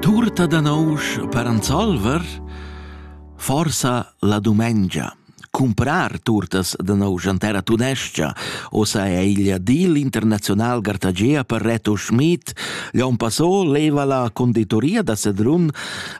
Turta da nousch per anzolver? Forsa la dumengia. Cumprar turtas da nousch an terra tunescia, ossa è igl deal internazional gartagea per Reto Schmid, Leon Passot leva la conditoria da Sedrun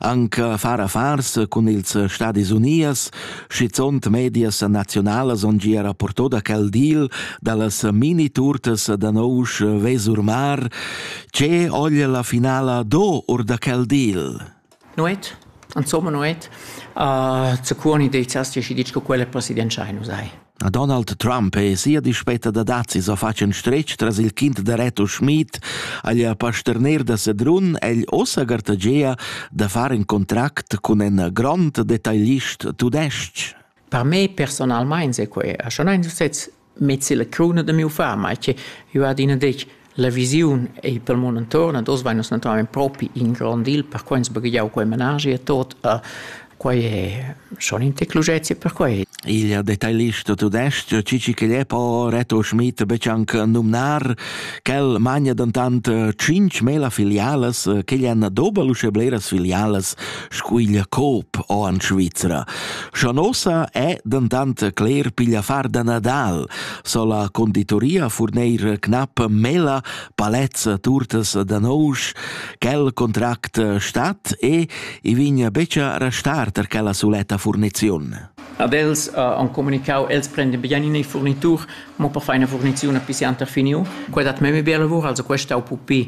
anca far affars cun ils Stadis Unias, schizunt medias nazionalas on gia rapporto da quel deal dallas mini-turtas da nousch Vesurmar, Tge oglia la finala do or da quel deal? Nuet, insomma nuet. Uh, Zaccuoni deizas ti dici che quella presidenza nu sai. A Donald Trump e sia dispetta da dazi so facen strech tras il kind da Reto Schmid agli a pasterner da Sedrun egl ossa gartagea da far in contract con un grand detaglist tudesc. Per me personalmente se que a schon ein sez Mez illa cruna da miu far, mai che jeu adina detg, la visiun ei pel mund intuorn ad oz vain nus naturalmein propi in grond il, perquai ins baghegiau quei managi e tot. Quai è schon in tec lucezia per quei. Il detailist tudestg Cici Celepo Reto Schmid betg anc numnar quel magna dentant tschintg mela filialas che han dober uschè bleras filialas scuiglia Coop o in Svizra. Scha nossa è dentant cler piglia far da Nadal, so la conditoria furneir knappa mela palets turtas da nousch, quel contract stat e i vigna becia restar tar quella suletta furniziun. Ad els uh, han comunicau, els prenden bien in furnitur, mo per far una furnizione pisanter finiu. Quella dat meme bel lavor, also questa au pupi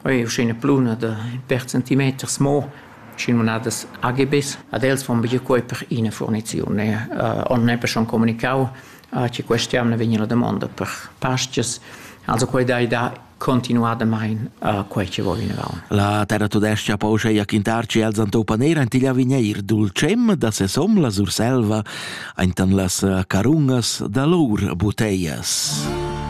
Quei ei uschè ina pluna da in pèr centimeters mo, sc'in munadas AGBs. Ad els fan buca quei per ina furniziun e on neppe schon communicau che questa jamna vegn la damonda per pastgas. Also quei dai da continuadamein quei che va vinavon. La terratudestga pouscha quintar che els han tau paner ein igl avegnir dulcem da sesom la Surselva, aintan las carungas da lur buteias.